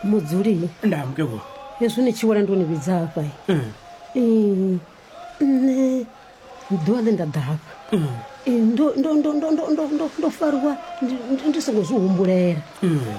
mudzuli ndaa mukegulu hezwi ni tshi wela ndo ni vhidza hafha nṋe ḓuvha ḽe nda ḓa hafha ndo fariwa ndi songo zwi humbulela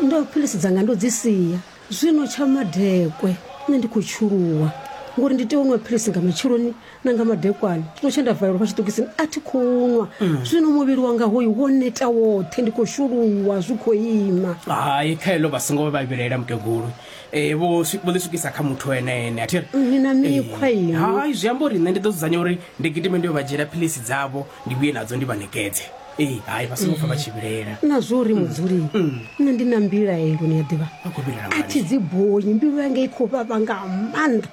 ndo philisi dzanga ndo dzi sia zwino tsha madekwe nṋe ndi khou tshuluwa ngori ndi tea u nwa philisi nga matsheloni na nga madekwana tshiṅwe tshe nda valelwa fha tshiṱokisini a thi khou nwa zwino muvhili wanga hoyu wo neta woṱhe ndi khou shuluwa zwi khou ima hai kha heḽo vha songo vha vhilaela mukegulu um vho swi- vho ḽi swikisa kha muthu ene ene a thi ri ni na mikhwa inwi hai zwi amba uri nṋe ndi ḓo dzudzanya uri ndi gidime ndi yo vha dzhiela philisi dzavho ndi vhuye nadzo ndi vha nekedze ee hai vha songo pfa vha tshi vhilaela na zwo uri mudzuli nṋe ndi na mbilaelo ni a ḓivha vha khou vhilaela a thi dzi bonyi mbilu yanga i khou vhavha nga maanḓa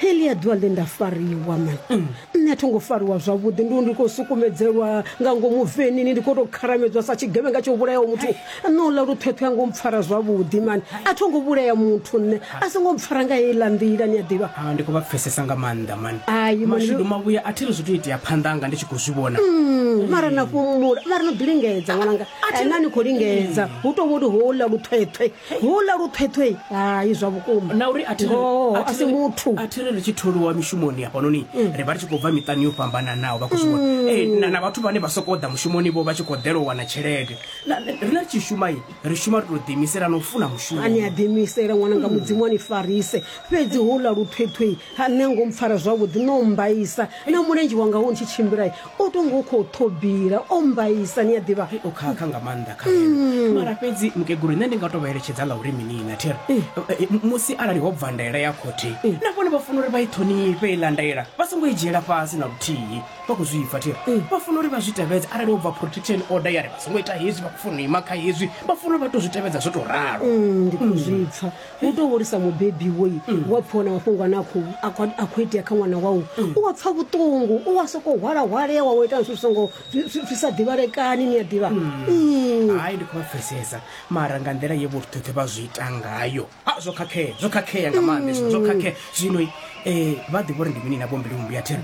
helia ḓuvha ḽe nda fariwa man mm. nṋe a tho ngo fariwa zwavhuḓi ndi ndi khou sukumedzelwa nga ngomu venini ndi khou tou kharamedzwa sa tshigevhenga tsho vhulayaho muthu nṋe uḽa luṱhoṱho ya ngo mpfara zwavhuḓi mani a tho ngo vhulaya muthu nṋe a so ngo mpfara nga heiḽa nḓila ni a ḓivha ah, ndi khou vha pfesesa nga maanḓa mani mashudu mavhuya a thi ri zwi to itea phanḓa anga ndi tshi khou zwi vhona mm, mara na fhumula mara no ḓi lingedza ṅwananga na ni khou lingedza hu tou vholi houḽa luṱhoṱho Houḽa luṱhethwe, hai, zwa vhukuma. Na uri a thi ri, Ngoho, a a thi si ri, muthu. a thi ri ri tshi tholiwa mishumoni hafhanoni, ri vha ri tshi khou bva miṱani yo fhambananaho, vha khou zwi vhona. Ee, na, na vhathu vhane vha sokou ḓa mushumoni-vho vha tshi khou ḓela u wana tshelede. Na, na, riṋe ri tshi shuma-i, ri shuma ri tou ḓiimisela na u funa mushumo. A ni a ḓiimisela, ṅwananga, Mudzimu a ni farise. Fhedzi houḽa luṱhethwe, ha, nṋe ngo mpfara zwavhuḓi, no mmbaisa na mulenzhe wanga hu ntshi tshimbila. o tonga u khou ṱhobila o mbaisa ni a ḓivha Hei, o khakha nga maanḓa kha ene mara fhedzi mukegulu nṋe ndi nga to vha eletshedza nga uri minina thiri Eh, eh, m- musi arali ho bva ndaela ya khothe na vhone vha funa uri vha i ṱhonifhe iḽa ndaela vha songo i dzhiela fhasi na luthihi vha khou zwi pfa thiri Eh. vha funa uri vha zwi tevhedze arali ho bva protection order ya ri vha songo ita hezwi vha khou funa u ima kha hezwi vha funa uri vha to zwi tevhedza zwo to ralo Mm, ndi khou zwi pfa u tou hulisa mubebi woi mm. wa pfhiwa na mafhungo ane a khou itea kha ṅwana wau mm. u wa pfha vhuṱungu u wa sokou hwalahwalewa wo ita zwithu songo zwi sa ḓivhalekani ni a ḓivha mm. hai ndi khou vha pfesesa mara nga nḓila ye vhoṱhoṱhe vha zwi ita ngayo a zwo khakhea zwo khakhea nga maanḓa zwo khakhea zwino um vha ḓivha uri ndi mini na vho mbilumbi ya thera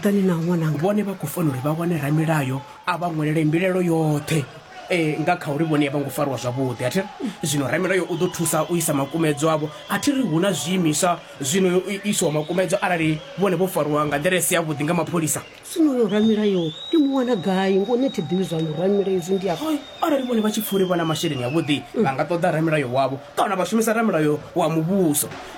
vhone vha khou fanela uri vha wane ramilayo a vha ṅwelele mbilaelo yoṱhe um nga kha uri vhone a vho ngo fariwa zwavhuḓi a thi ri zwino ramilayo u ḓo thusa u isa makumedzo avho a thi ri hu na zwiimiswa zwino yo isiwa makumedzo arali vhone vho fariwa nga nḓila i si yavhuḓi nga mapholisa zwino yo ramilayo ndi mu wana gai ngo ne thi ḓivhi zwa muramila izwi ndi afha arali vhone vha tshi pfuli vha na masheleni avhuḓi vha nga ṱoḓa ramilayo wavho kana vha shumisa ramilayo wa muvhuso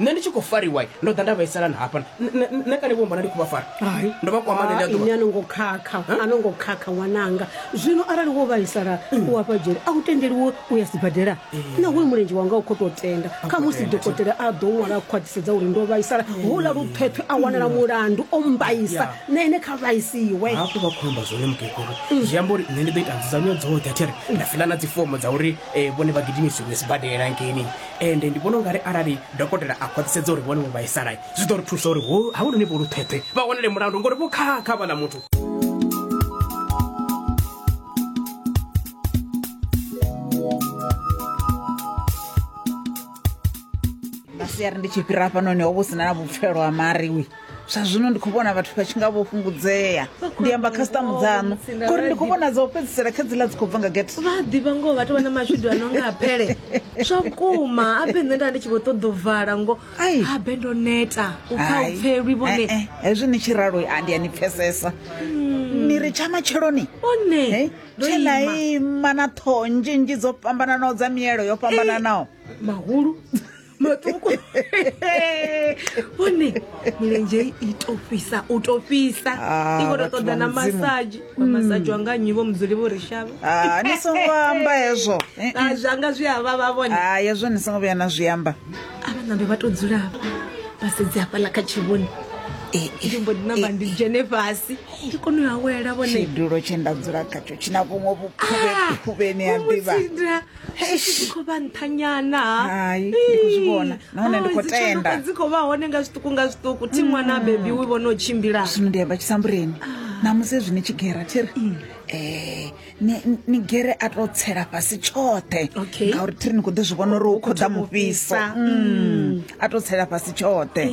Nṋe ndi tshi khou fariwa ndo ḓa nda vhaisala na hafha nṋe kale vho mbona ndi khou vha fara ndo vha kwama ḽeḽi aḓuvha. Ini a no ngo khakha a no ngo khakha ṅwananga zwino arali wo vhaisala mm. u afha dzhele a u tendeliwo u ya sibadela na hoyu mulenzhe wanga u khou tou tenda kha musi dokotela a ḓo ṅwala a khwaṱhisedza uri ndo vhaisala mm. houḽa luṱhweṱhwe a wanala mm. mulandu o mbaisa na ene kha vhaisiwe hafho vha khou amba zwone mukegulu zwi amba uri nṋe ndi ḓo ita nzudzanyo dzoṱhe a thi ri nda fiḽa na dzifomo dza uri eh, vhone vha gidimisiwe sibadela ngeni Ende ndi vhona u nga ri arali dokotela a khwaṱhisedza uri vhone vho vhaisala, zwi ḓo ri thusa uri ho havhanoni vho luṱheṱhe vha wanele mulandu ngori vho khakha havhaḽa muthu. Nga siari ndi tshi fhira hafhanoni ho vha hu si na na vhupfelo ha mari. zwa zwino ndi khou vhona vhathu vha tshi nga vho fhungudzea ndi amba khasitamu dzaṋu ngori ndi khou vhona dza u fhedzisela kha dzila dzi khou bva nga gete vha a ḓivha ngoho vhathu vha na mashudu a no nga apele zwa vhukuma abe nṋe nda ndi tshi vho ṱoḓa u vala ngo Ai. abe ndo neta u pfa u pfelwi vhone Eh, eh, hezwi ni tshi ralo a ndi a ni pfesesa ni ri tsha matsheloni one eh, ndo tshe na ima ima na ṱhoho nzhinzhi dzo fhambananaho dza mielo yo fhambananaho mahulu maṱuku vhone milenzhe i to fhisa u to fhisa ah, i khou to ṱoḓa na masaji wa hmm. masaji wanga nnyi vho mudzuli vho ri shavha ah, ni songo amba hezwo eh, eh. zwanga zwi a vhavha vhone ah, hezwo ni songo vhuya na zwi amba a vha nambe vha to dzula hafha vha sedzi hafhaḽa kha tshivhoni eh, ndi mbo ndi namba ndi dzhene fhasi ndi kone u awela vhone tshidulo tshe nda dzula khatsho tshi na vhuṅwe vhukhuvhe khuvheni ya ḓivha Eish. khou vha nṱhanyana Hai, ndi khou zwi vhona. Nahone ndi khou tenda. dzi khou vha hone nga zwiṱuku nga zwiṱuku thi ṅwana bebi wi vhona u tshimbila zwino ndi amba tshisambureni namusi ezwi ni tshi gera thiri um ni ni gere a to tsela fhasi tshoṱhe Okay. ngauri thiri ni khou ḓi zwi vhona uri hu khou ḓa mufhiso mufhisa. Mm. a to tsela fhasi tshoṱhe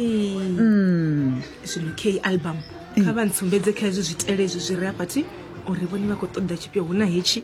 Mm. zwino k album kha vha ntsumbedze kha hezwi zwitele ezwi zwi re afhathi uri vhone vha khou ṱoḓa tshifhio hu na hetshi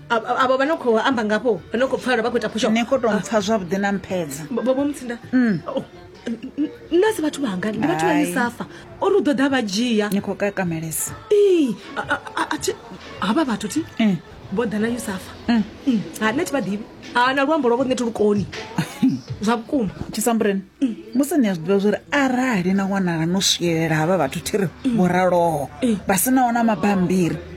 avho vha no khou amba ngafho vha no khou pfala vha khou ita phusho ni khou tou mpfa zwavhuḓi na mphedza bobo mutsinda mm. oh, nna si vhathu vhanga ndi vhathu vha misafa o ri u ḓo ḓa vha dzhia ni khou kakamelesa ee havha vhathu ti mm. vho ḓa na yusafa mm. ha nṋe thi vha ḓivhi ha na luambo lwavho ṋe thi lukoni zwa vhukuma tshisambureni musi ni a zwi ḓivha zwori arali na wanala no swielela havha vhathu thi ri vho raloho vha si naona mabambiri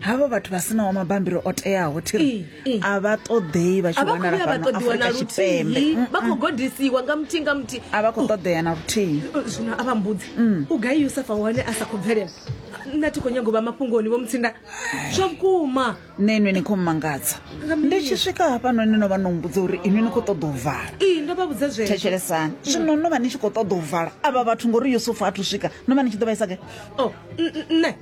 havho vhathu vha sinaho mabambiri o teaho thiri a vha ṱoḓei vha tshi wanala fhano afurika tshipembe vha khou godisiwa nga muthihi nga muthihi a vha khou ṱoḓea na luthihi zwino a vha mbudzi mm. u gai yusafa hone a sa khou bvelela nṋe thi khou nyago vha mafhungoni vho mutsinda zwa vhukuma nṋe inwi ni khou mmangadza ndi tshi swika hafhano ni no vha no mbudza uri inwi ni khou ṱoḓa u vala ee ndo vha vhudza zwe thetshelesani mm. zwino no vha ni tshi khou ṱoḓa u vala avha vhathu ngori yusufa a thu swika no vha ni tshi ḓo vhaisa ke o oh, nṋe